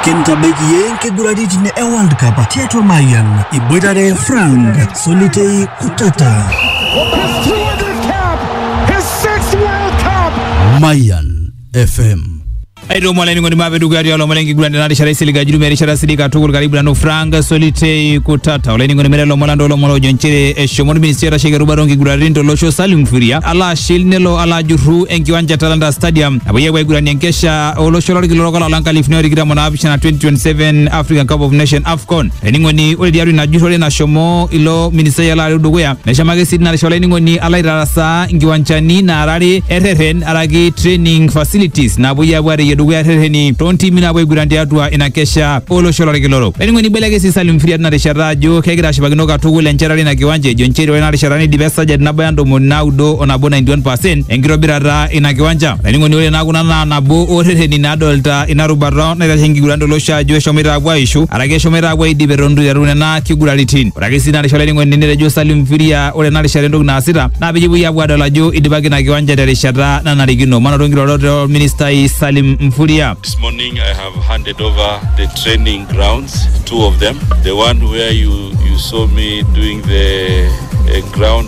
Kintabaiki iyie nkiguraritin e World Cup tiatua Mayian iboitare Frank Solitei Kutata. Mayan FM. aitomo olainining'oni maape dukuya tialo omon enkiguran tena rishata isilig ajurumia erishata sidai katukul karibu nanu frank solitei kutata olainining'oni mere lomon lando lomon oojo nchere eshomo orministri oitasheki erubata onkiguraritin tolosho salim furia alo ashil nelo alo ajurru enkiwanja talanta stadium napuoi apuo aiguranie enkesha olosho lorkila orok olapa lenkalifuni otikitam onaapishana 2027 African Cup of Nation AFCON. Ening'oni ore tiatua ina jurrore nashomo ilo ministai alo areu dukuya neshomo ake sii tina rishata olainining'oni alo aitarasaa nkiwanchani naarare erreren araki training facilities naapuoi apuo areyie dukuya errereni toontimi naapuo aiguran tiatua ina kesha olosho lorkila orok. Olainining'oni ibeleke sii Salim Firia tina rishata ajo kegira ashipakino katukul enchetare ina kiwanja ejo nchere ore ina rishata neidipa esajati nabaya ntomoni naudo o nabo 91% enkitobirata ina kiwanja laining'oni ore naa kuna naa nabo oorreteni nadolta ina rubata naitashe enkiguran tolosho ajo eshomoita apuo aishu araki eshomoita apuo aidip eton itu iteru nena kiguraritin ore ake sii ina rishata laining'oni netejo Salim Mfiria ore ena rishata entoki naasita naa peyie epuoi apuo adol ajo idipaki ina kiwanja terishata nanarikino manoto nkirorot olministai Salim Mfuria This morning I have handed over the training grounds, two of them. The one where you, you saw me doing the uh, ground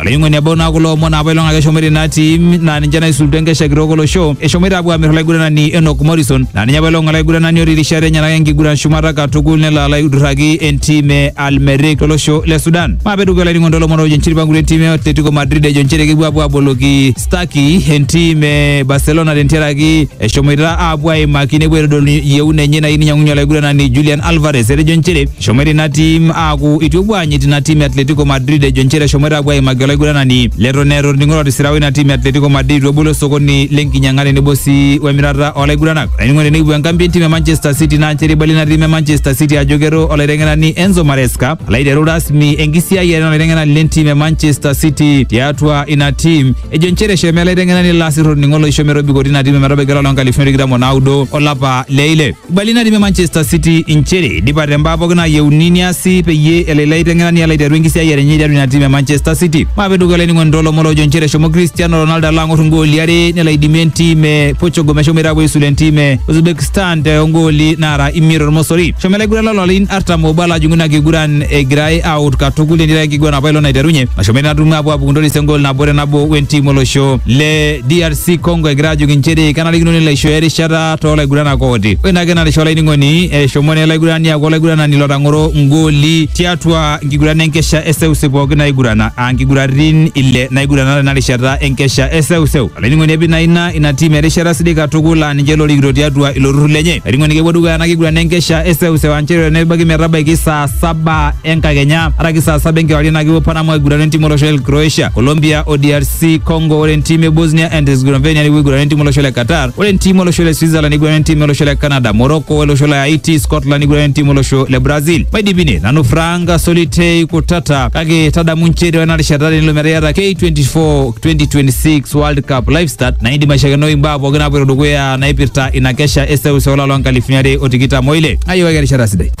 olaing'oni ebau naa kulo omon apa ilong ake eshomoita ina tim naa ninche naisulutua enkesha kitok olosho eshomoita apuo aamir olaiguranani Enock Morrison naa ninye apa ilong olaiguranani otii irishat enyenak enkiguran shumata katukul nelo alo aidurraki entim e Al Merrikh tolosho le Sudan maape dukuya olainining'oni toolomon oojo nchiripa nkulie timi e Atletico Madrid ejo nchere kepuo apuo aboloki Stuckey entim e Barcelona tentiaraki eshomoita apuo aimaki nepuo aitodolu yieuna enye nayieu ninyiang'unye olaiguranani Julian Alvarez etejo nchere Eshomoita ina tim aaku itu epuo aanyit ina tim e Atletico Madrid ejo nchere eshomoita apuo aimaki olaiguranani leton eeta orning'o lotisira oina tim e Atletico Madrid itu ebolo osokoni lenkinyang'a tenebo sii wemirata olaiguranani. Olainining'oni tenekipuo enkambi entim e Manchester City naa nchere eibalie ina tim e Manchester City ajo kero olaiteng'enani Enzo Maresca alo aiteru rasmi enkisiayiare olaiteng'enani lentim e Manchester City tiatua ina tim ejo nchere eshomo ele aiteng'enani lasir orning'o loisho metobiko tina tim ometabaiki olapa loonkalifuni tikitam onaudo olapa le ile. Ibali natii Manchester City inchere idipate mbaa pookin naayieuni niasi peyie elo ilo aiteng'enani alo aiteru enkisiayiare enye tiatua ina tim e Manchester City. Maape dukuya olainining'oni toolomon loojo inchere eshomo Cristiano Ronaldo alo ang'or ingooli are nelo aidimie entim e Portugal meshomoita aapuo aisula entim e Uzbekistan te ongooli naara imiet tormosori. Eshomo ilaiguran loo larin artam oobo alo ajing'u ina kiguran egirai aawut katukul netii ake enkiguran apa ilo naiterunye nashomo ina tumo aapuo aapuku ntoris engool nabo te nabo wentim olosho le DRC Congo egira aajoki inchere kenarikino nelo aishooyo erishata toolaiguranak ooti. Ore ina kenarisho olainining'oni eshomo naa ele aigurani aaku olaiguranani lotang'oro ngooli tiatua nkiguran enkesha eseuseu pooki naigurana aa nkiguratin ile naigurana tena rishata enkesha eseuseu. Olainining'oni epik naa ina ina tim erishata sidai katukul aa ninche lorikito tiatua ilo turrur lenye. Olainining'oni kepuo dukuya ena kiguran enkesha eseuseu aa nchere nebaiki metabaiki saa saba enkakenya araki saa saba enkewarie naa kepuo Panama aigurana entim olosho le Croatia, Colombia o DRC Congo. Ore entim e Bosnia and Herzegovina nepuo aigurana entim olosho le Qatar. Ore entiim olosho le Switzerland neiguran entiim olosho le Canada, Morocco olosho le Haiti, Scotland neiguran entiim olosho le Brazil. Maidipine nanu Frank Solitei Kutata kake tadamu nchere ore ena rishata tenilo metaa iyata K24 2026 World Cup live start naa indim aishakenoi imbaa pooki naapoito dukuya naipirta ina kesha e seuseu olapa loo nkalifuni are o tikitam oile. Ayiewaki erishata sidai.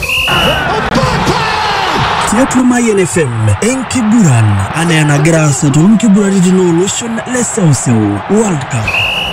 tiatua Mayian FM enkiguran anaa enagira aasa toonkiguraritin ooloshon le seuseu World Cup.